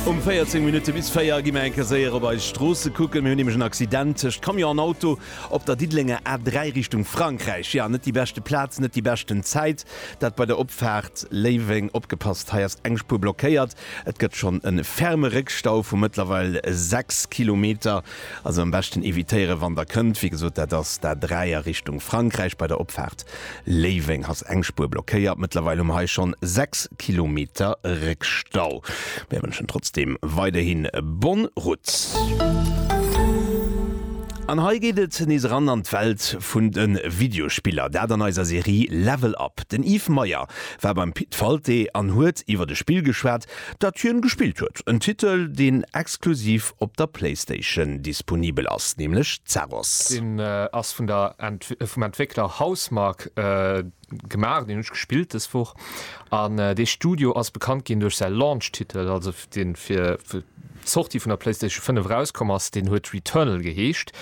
Um 14 Minutte bis 4 gi mir eng Kéier séier op eis Stroosse kucken. Mir hunn nämlech en Accident tëscht Camion an Auto op der Diddelenger A3 Richtung Frankräich. Jo, net déi beschte Plaz, net déi beschten Zäit, dat bei der Opfaart Léiweng. Opgepasst, hei ass eng Spuer blockéiert. Et gëtt schonn e ferme Réckstau vu mëttlerweil 6 Kilometer. Also am beschten evitéieren, wann Der kënnt. Wéi gesot, dat ass d'A3 a Richtung Frankräich bei der Opfaart Léiweng ass eng Spuer blockéiert, mëttlerweil hu mer hei schonn 6 Kilometer Réckstau. Mir wënschen trotzdeem weiderhin bonne route. An hei geet et nees eran an d'Welt vun de Videospiller, dat an eiser Serie Level Up. Den Yves Meyer war beim Pit Falté an huet iwwert e Spill geschwat, dat hien gespillt huet. En Titel, deen exklusiv op der Playstation disponibel ass, nämlech Zaros. Deen ass vun der, vum Entwéckler Housemarque gemaach, deen hunn ech gespillt des Woch an dee Studio ass bekannt ginn duerch säi Launch-Titel, also dee fir d'Sortie vun der Playstation 5 erauskomm ass, deen huet Returnal geheescht.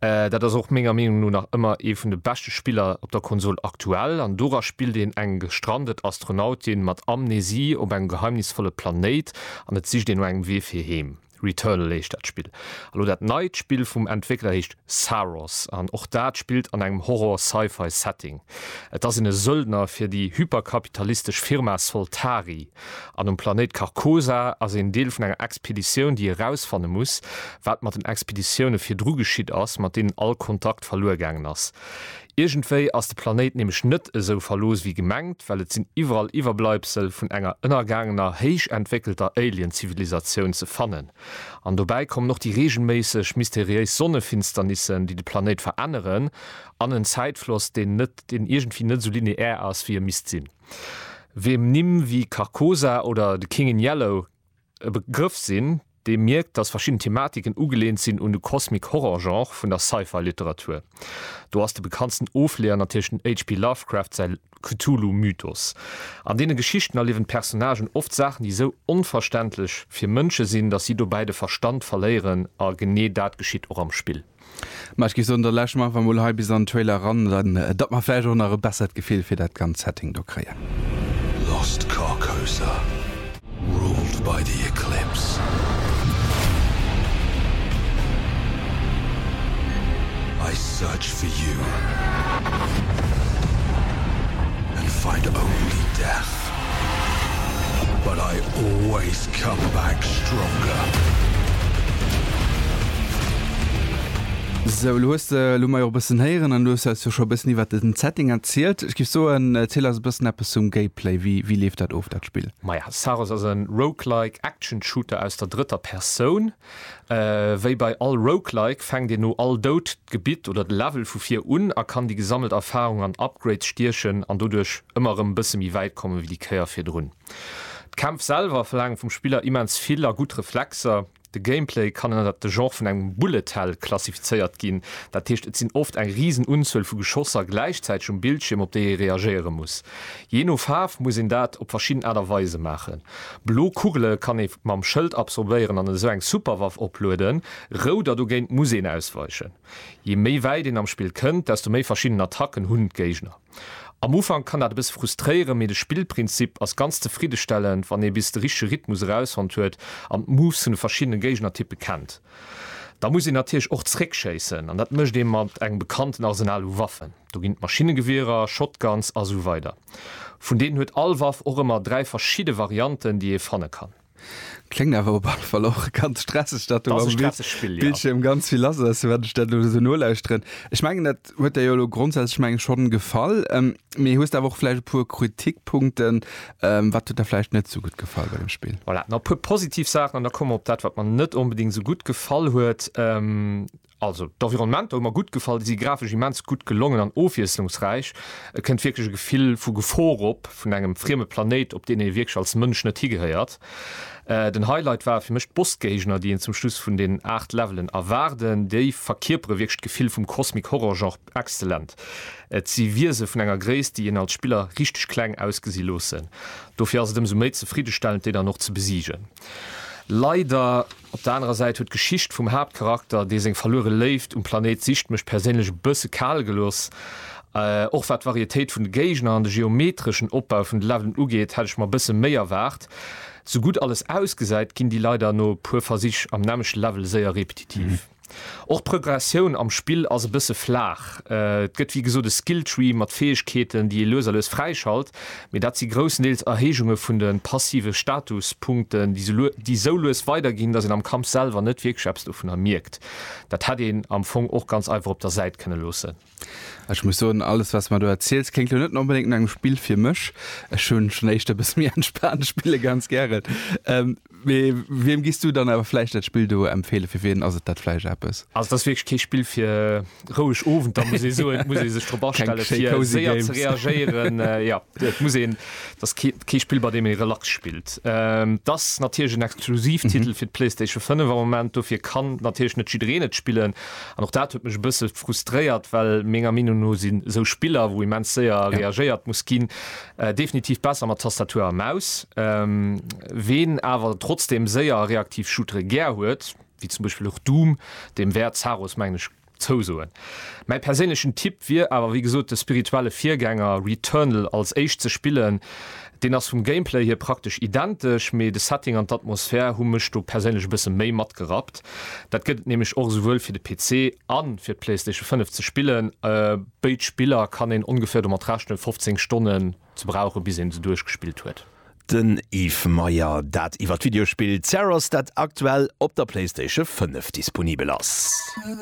Dat ass och menger Meenung no nach ëmmer ee vun de beschte Spiller op der Konsol aktuell an dora spillt een eng gestrandet Astronautin mat Amnesie op engem geheimnisvolle Planéit an et sicht een no engem Wee fir heem. Returnal heescht dat Spill. A lo dat neit Spill vum Entwéckler heescht Saros an och dat spillt an engem Horror-Sci-Fi Setting. Et ass een e Söldner fir déi hyperkapitalistesch Firma Soltari an um Planéit Carcosa ass een Deel vun enger Expeditioun déi erausfanne muss wat mat den Expeditioune virdru geschitt ass mat deenen all Kontakt verluer gaangen ass. Iergendwéi ass de Planéit nämlech net esou verlooss wéi gemengt, well et sinn iwwerall Iwwerbleibsel vun enger ënnergaangener héich entwéckelter Alien-Zivilisatioun ze fannen. An dobäi kommen och déi reegelméisseg mysteriéis Sonnefinsternissen, déi de Planéit veränneren, an en Zäitfloss, deen net, deen iergendwéi net esou lineär ass, wéi e misst sinn. Wiem Nimm wéi Carcosa oder The King in Yellow e Begrëff sinn, dee mierkt, datt verschidden Thematiken ugeleent sinn un de Cosmic Horror Genre vun der Sci-Fi Literatur. Do ass de bekanntsten Ofleeër natierlech den HP Lovecraft säi Cthulhu Mythos. An deene Geschichten erliewen d'Personnagen oft Saachen, déi esou onverständlech fir Mënsche sinn, datt si dobäi de Verstand verléieren a genee dat geschitt och am Spill. Ma ech géif soen, da lauschteren mer einfach mol hei bis an den Trailer eran, datt mer vläicht och nach e bessert Gefill fir dat ganzt Setting do kréien. Lost Carcosa, ruled by the Eclipse. I search for you and find only death. Respekt. But I always come back stronger. Sou, elo hues de, elo hu mer jo och e bëssen héieren an elo hues de eis jo scho e bëssen iwwert den Setting erzielt. Ech géif soen, erziel eis e bëssen eppes zum Gameplay. Wéi, wéi leeft dat of, dat Spill? Maja, Saros ass e Roguelike Action Shooter aus der drëtter Persoun. Wéi bei all Roguelike fänkt een no all Doud d'Gebitt oder de Level vu vir un a kann déi gesammelt Erfarung an Upgrades stiechen an doduerch ëmmer erëm e bësse méi wäit kommen ewéi déi Kéier virdrun. D'Kämpf selwer verlaangen vum Spiller immens vill a gutt Reflexer. De Gameplay kann ënnert de Genre vun engem Bullet Hell klassifizéiert ginn, dat heescht et sinn oft eng risen Unzuel vu Geschosser gläichzäiteg um Bildschierm op déi ee reagéiere muss. Jee no Faarf muss een dat op verschidden Aart a Weise maachen. Blo Kugele kann ee mam Schëld absorbéieren an esou eng Superwaff oplueden, rout a dogéint muss een ausweichen. Je méi wäit een am Spill kënnt, desto méi verschidden Attacken hunn d'Géigner. Am Ufank kann dat e bësse frustréieren, mee de Spillprinzip ass ganz zefriddestellend, wann ee bis de richtege Rhythmus erausfonnt huet an d'Moves vun de verschiddene Géignertyppe kennt. Da muss een natierlech och zeréckschéissen an dat mécht ee mat engem bekannten Arsenal u Waffen. Do ginn et Maschinnegewierer, Shotguns a sou weider. Vun deenen huet all Waff och ëmmer dräi verschidde Varianten, déi ee fanne kann. Kléngt awer op alle Fall och ganz stresseg, datt do am Bildschierm ganz vill lass ass, wat ech dat elo esou nolauschteren. Ech mengen, dat huet der jo elo grondsätzlech mengen schonn gefall, mee hues der awer och vläicht e puer Kritikpunkten? Wat huet der vläicht net esou gutt gefall bei dem Spill? Voilà, nach e puer positiv Saachen an da komme mer op dat, wat mer net onbedéngt esou gutt gefall huet. Also d'Environnementer hu mer gutt gefall, déi si grafesch immens gutt gelongen an ofwiesslungsräich. Et kënnt wierklech e Gefill vu Gefor op, vun engem frieme Planéit, op deen ee wierklech als Mënsch net higehéiert. Den Highlight ware fir mech d'Bossgéigner, déi een zum Schluss vun den 8 Levelen erwaarden. Déi verkierpere wierklech d'Gefill vum Cosmic Horror Genre exzellent. Et si Wiese vun enger Gréisst, déi een als Spiller richteg kleng ausgesi loossen. Dofir ass et ëmsou méi zefriddestellend, déi dann och ze besiegen. Leider. Op der anerer Säit huet d'Geschicht vum Haaptcharakter, dee seng verluere Léift um Planéit sicht, mech perséinlech e bësse kal gelooss. Och wat d'Varietéit vun de Géigner an de geometreschen Opbau vun de Levelen ugeet, hätt ech mer e bësse méi erwaart. Sou gutt alles ausgesäit, ginn déi leider no e puer Versich am nämmlechte Level séier repetitiv. Och d'Prögressioun am Spill ass e bësse flaach. Et gëtt wéi gesot e Skilltree mat Fäegkeeten, déi ee lues a lues fräischalt, mee dat si grousstendeels Erhéijunge vun de passive Statuspunkten, déi esou lues weiderginn, datt een am Kampf selwer net wierklech eppes dovunner mierkt. Dat hätt een am Fong och ganz einfach op der Säit kënne loossen. Ech muss soen, alles wats mer do erziels kléngt lo net onbedéngt no engem Spill fir mech. Ech hunn schon éischter e bësse méi entspaant Spille ganz gären. Mee wiem giss du dann awer vläicht dat Spill do empfeelen? Fir wien ass et dat vläicht eppes? Also et ass wierklech kee Spill fir roueg Owenter muss ee soen. Et muss ee sech drop astellen fir séier ze reagéieren. Jo, et muss een, et ass kee Spill bei deem ee relax spillt. Et ass natierlech en Exklusivtitel fir d'Playstation 5 am Moment, dofir kann natierlech net jiddereen et spillen. An och dat huet mech e bësse frustréiert, well menger Meenung no si sou Spiller, wou immens séier reagéiert muss ginn, definitiv besser mat Tastatur a Maus. Ween awer trotzdeem séier a reaktiv Shootere gär huet, wéi zum Beispill och Doom, deem wäert Zaros, mengen ech, zousoen. Mäi perséinlechen Tipp wier awer wéi gesot, de spirituelle Virgänger Returnal als éischt ze spillen, Deen ass vum Gameplay hier praktesch identesch, mee de Setting an d'Atmosphär hu mech do perséinlech e bësse méi matgerappt. Dat gëtt et nämlech och esouwuel fir de PC a fir d'Playstation 5 ze spillen. Béid Spiller kann een ongeféier domat rechnen, 15 Stonnen ze brauchen, bis een se duerchgespillt huet. Den Yves Meyer dat iwwer d'Videospill Zeros, dat aktuell op der Playstation 5 disponibel ass.